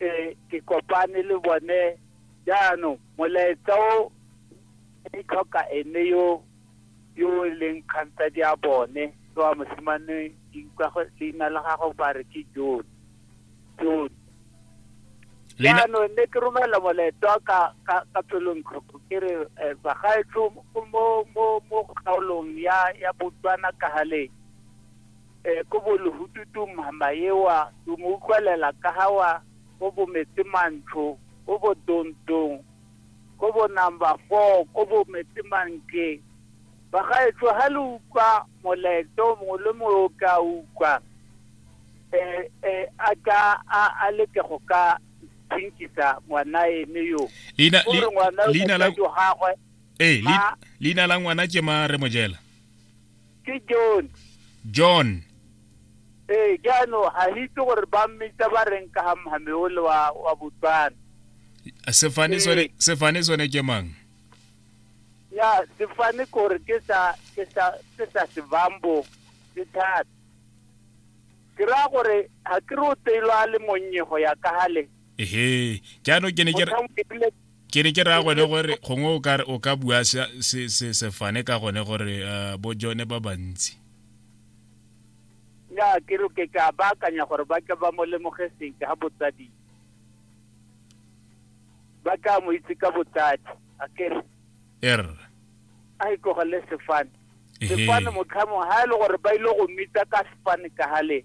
e ke kopane le bone jaanong molaetsa o e tlhoka ene yo yo e leng kganta di a bone ke wa mosimane leina la gago ba re ke jone jone jaanong ne ke romela molaetsa ka ka ka pelong tlhoko ke re eh, bagaetsho mo mo mo kgaolong ya ya botswana ka galeng E ko bo lehututu mhama ewa do mo utlwalela ka ha wa ko bo metse mantsho ko bo dontong ko bo number 4 ko bo metse mantle ba ga etso ha le utlwa moleto mo le mo o ka utlwa e e a ka a a le ke go ka thinkisa ngwana ene yo leina leina la eh leina la ngwana ke ma re mojela ke john john ee jaanong ga itse gore ba mmitsa ba reng ka ga mohame ole wa wa botswana sefane sone Ee. sefane sone ke mang ya sefane kore ke sa ke sa ke sa sebambo ke thata ke raya gore ga ke re o teilwa a le monnye go ya ka gale ehe jaanong ke ne ke re- ke ne ke raya gone gore gongwe o kare o ka bua sefane ka gone gore eh, bo jone ba bantsi ya ke re ke ka baakanya gore ba ka ba mo lemoge sentle ga botsadi ba ka mo itse ka botsadi a kere er a e tlogele sefane sefane motlhamo ga e le gore ba ile go mmitsa ka sefane ka gale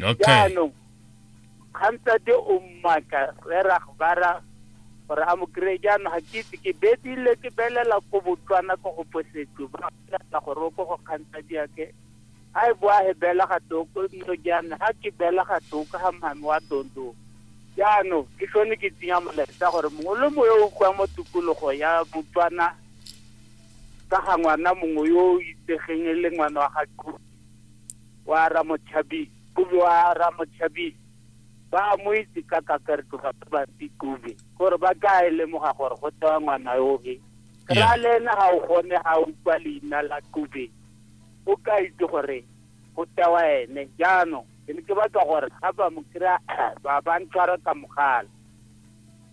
okay jaanong kgantsate o mmaka re ra ba ra gore a mo kry jaanong ga ke itse ke bedile ke belela ko botswana ko go posetso ba lela gore o ko go kgantsa diake a e boa he bela ga toko nno jaana ga ke bela ga toko ga mame wa tondo jaanong ke sone ke tsenya molaetsa gore mongwe le moyo o kwa mo tikologo ya botswana ka ga ngwana mongwe yo o itsegeng e le ngwana wa ga wa Ramotšhabi Kube wa Ramotšhabi ba mo itse ka kakarto ba ba Kube gore ba ka e lemoga gore go tewa ngwana yoge ra le ena ga o gone ga o kwa leina la Kube o ka itse gore go tewa ene jaanong ke ne ke batla gore ga ba mo kry-a ba ba ntshwara ka mogala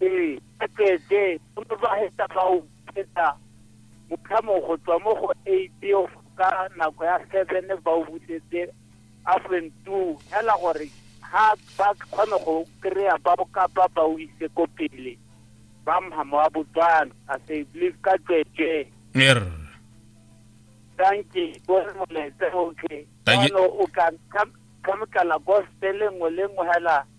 Ee, a tsweetswe go motlwagetsa fa o kgweetsa motlhamo go tswa mo go eight ka nako ya seven ba o busetse affluent two fela gore ga ba kgone go kry-a ba bokapa ba o ise ko pele ba mhamo wa botswana a se believe ka tsweetswe er thank you go moletse okay Thank you. Jaanong o ka ka- ka motlala gospel nngwe le nngwe fela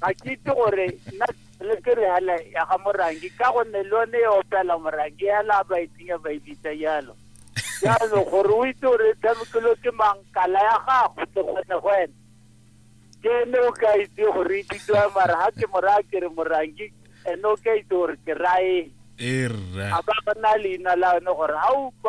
ga ke itse gore nna le ke re hela ya ga morangi ka gonne le yone e opela morangi hela ba itsenya ba ibitsa jalo jalo gore o itse gore tshamekelo ke mang kala ya gago ke kgone go ene ke ne o ka itse gore e bitswa mara ga ke moraya ke re morangi ene o ka itse gore ke raeng er, a ba ba na leina la yone gore ga o